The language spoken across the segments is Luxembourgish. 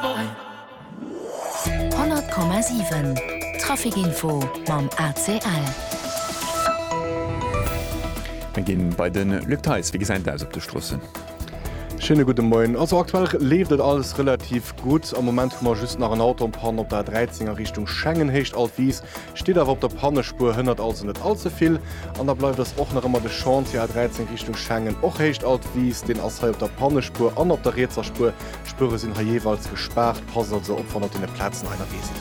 100,7 Traficinfo mam ACL. Mir ginn bei de Luc Theis. Wéi gesäit et aus op de Stroossen? Schéine gudde Moien. Also aktuell leeft et alles relativ gutt. Am Moment hu mer just nach en Auto an Panne op der A 13 a Richtung Schengen. Héicht Alt Wiis steet awer op der Pannespuer, hënnert also net all ze vill. An da bleift eis och nach ëmmer de Chantier A 13 Richtung Schengen. Och Héicht Alt Wiis, deen ass hei op der Pannespuer an op der rietser Spuer D'Spuere sinn hei jeeweils gespaart, passt also op wann der deene Plazen einerwee sidd.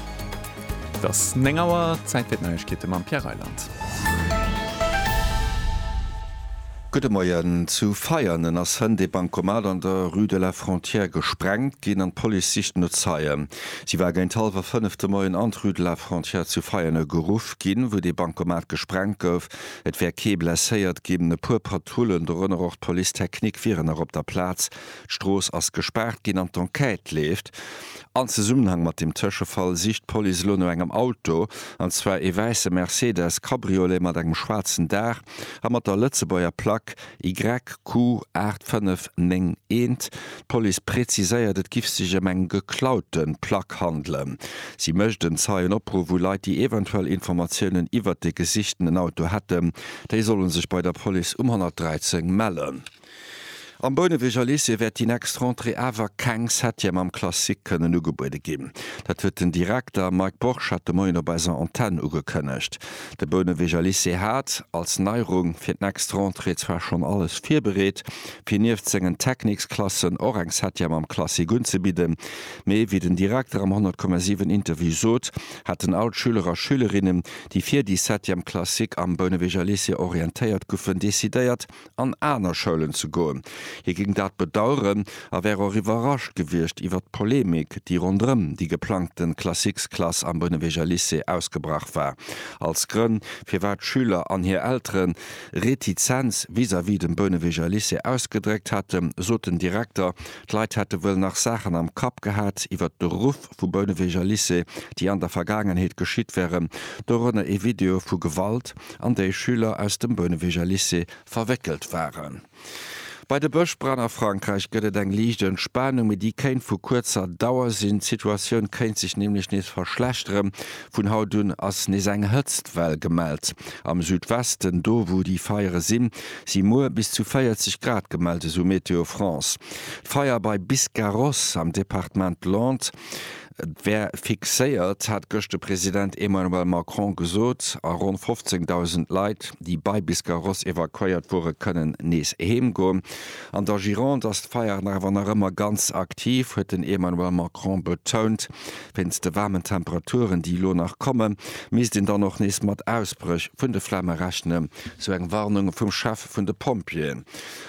Et ass 9 Auer, Zäit fir d'Neiegkeete mam Pierre Reyland. Gudde Moien, Zu Veianen ass hënt ee Bancomat an der Rue de la Frontière gesprengt ginn an d'Police sicht no Zeien. Si war géint hallwer 5 de Moien an d'Rue de la Frontière zu Veianen geruff ginn, wou dee Bancomat gesprengt gouf. Et wär kee blesséiert ginn. E puer Patrullen, dorënner och d'Police technique, wieren nach op der Plaz. D'Strooss ass gespaart ginn an d'Enquête leeft. An Zesummenhang mat dem Tëschefall sicht d'Police elo no engem Auto, an zwar ee wäisse Mercedes Cabriolet mat engem schwaarzen Daach a mat der Lëtzebuerger Plack YQ 8591. D'Police präziséiert, et giff sech ëm eng geklaute Plack handelen. Si mécht en Zeienopruff u Leit, déi eventuell Informatiounen iwwert de gesichtenen Auto hätten. Déi solle sech bei der Police um 113 mellen. Am Bouneweger Lycée wäert déi nächst Rentrée awer keng Septième am Classique kënnen ugebuede ginn. Dat huet den Direkter Mike Borchardt de Moien op eiser Antenn ugekënnegt. De Bouneweger Lycée hat, als Neierung fir d'nächst Rentrée, zwar schonn alles virbereet, fir nieft sengen Techniksklassen och eng Septième am Classique unzebidden, mee wéi den Direkter am 100 Komma 7 Interview sot, hätten all d'Schüler a Schülerinnen, déi fir déi Septième Classique am Bouneweger Lycée orientéiert guffen, decidéiert, an aner Schoulen ze goen. Hie géing dat bedaueren a wär och iwwerrascht gewiescht iwwert d'Polemik, déi ronderëm déi geplangte Classiques-Klass am Bounewegger Lycée ausgebrach war, als Grënn, firwat Schüler an hir Eltere Retizenz vis-à-vis dem Bounewegger Lycée ausgedréckt hätten, sot den Direkter, d'Leit hätte wuel nach Saachen am Kapp gehat iwwert d'Beruff. Grupp vu Bouneweger Lycée, déi an der Vergaangenheet geschitt wären, dorënner ee Video vu Gewalt, an déi Schüler aus dem Bouneweger Lycée verwéckelt waren. Bei de Bëschbränn a Frankräich gëtt et eng liicht Entspanung, mee déi kéint vu kuerzer Dauer sinn. D'Situatioun kéint sech nämlech nees verschlechteren. Vun haut un ass nees eng Hëtztwell gemellt. Am Südwesten, do wou déi Feiere sinn, si muer bis zu 40 Grad gemellt, esou Météo France. D'Feier bei Biscarrosse am Departement Lot wär fixéiert, hat gëscht de President Emmanuel Macron gesot, a ronn 15.000 Leit, déi bei Biscarrosse evakuéiert wore kënnen nees heem goen. An der Gironde ass d'Feier awer nach ëmmer ganz aktiv, huet den Emmanuel Macron betount. Wéinst de waarmen Temperaturen, déi elo nach kommen, misst een dann och nees mat Ausbréch vun de Flamme rechnen, sou eng Warnung vum Chef vun de Pompjeeën.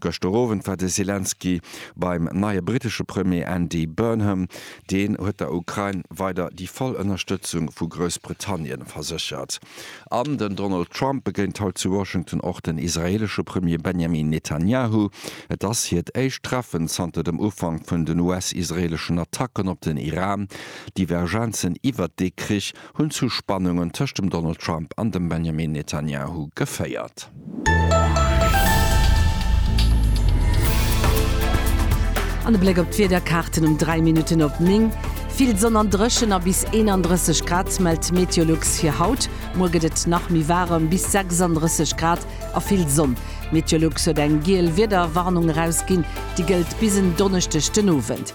Gëschter Owend war de Selenskyj beim neie brittesche Premier Andy Burnham. Deen huet der Ukrain weider déi voll Ënnerstëtzung vu Groussbritannien verséchert. An den Donald Trump begéint haut zu Washington och den israeelesche Premier Benjamin Netanyahu. Et ass hiert éischt Treffen zanter dem Ufank vun den US-israeeleschen Attacken op den Iran. Divergenzen iwwert dee Krich hunn zu Spannungen tëscht dem Donald Trump an dem Benjamin Netanyahu geféiert. An e Bléck op d'Wiederkaarten um 3 Minutten op 9. Vill Sonn an dréchen a bis 31 Grad mellt d'Meteolux fir haut. Muer gëtt et nach méi waarem, bis 36 Grad a vill Sonn. D'Meteolux huet eng giel Wiederwarnung erausginn, déi gëllt bis en Donneschdeg den Owend.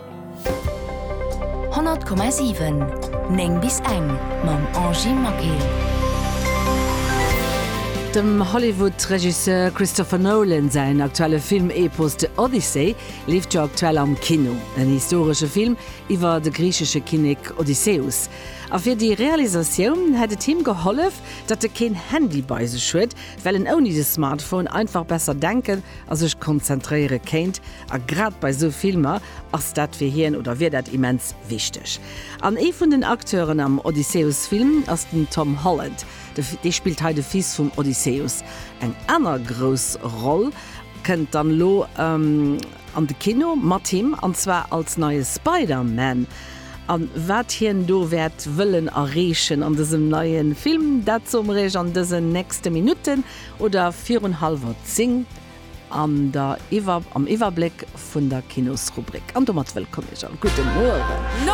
100,7 9 bis eng mam Angie Maquil. Dem Hollywood-Regisseur Christopher Nolan säin aktuelle Film-Epos The Odyssey leeft jo aktuell am Kino. En historesche Film iwwer de griichesche Kinnek Odysseus. A fir déi Realisatioun hätt et him gehollef, datt e keen Handy bei sech huet, well en ouni de Smartphone einfach besser denken a sech konzentréiere kéint. A grad bei esou Filmer ass dat fir hien, oder wier dat immens wichteg. An ee vun den Acteuren am Odysseus-Film ass den Tom Holland. Dee spillt hei de Fils vum Odysseus. Eng aner grouss Roll kënnt dann elo an de Kino mat him, an zwar als neie Spider-Man. A wat hien do wäert wëllen erreechen an dësem neie Film, dat soe mer iech an dësen nächste Minutten. Oder virun hallwer zéng an der Iwwer am Iwwerbléck vun der Kinosrubrik. An domat wëllkomm Iech all. Gudde Mueren.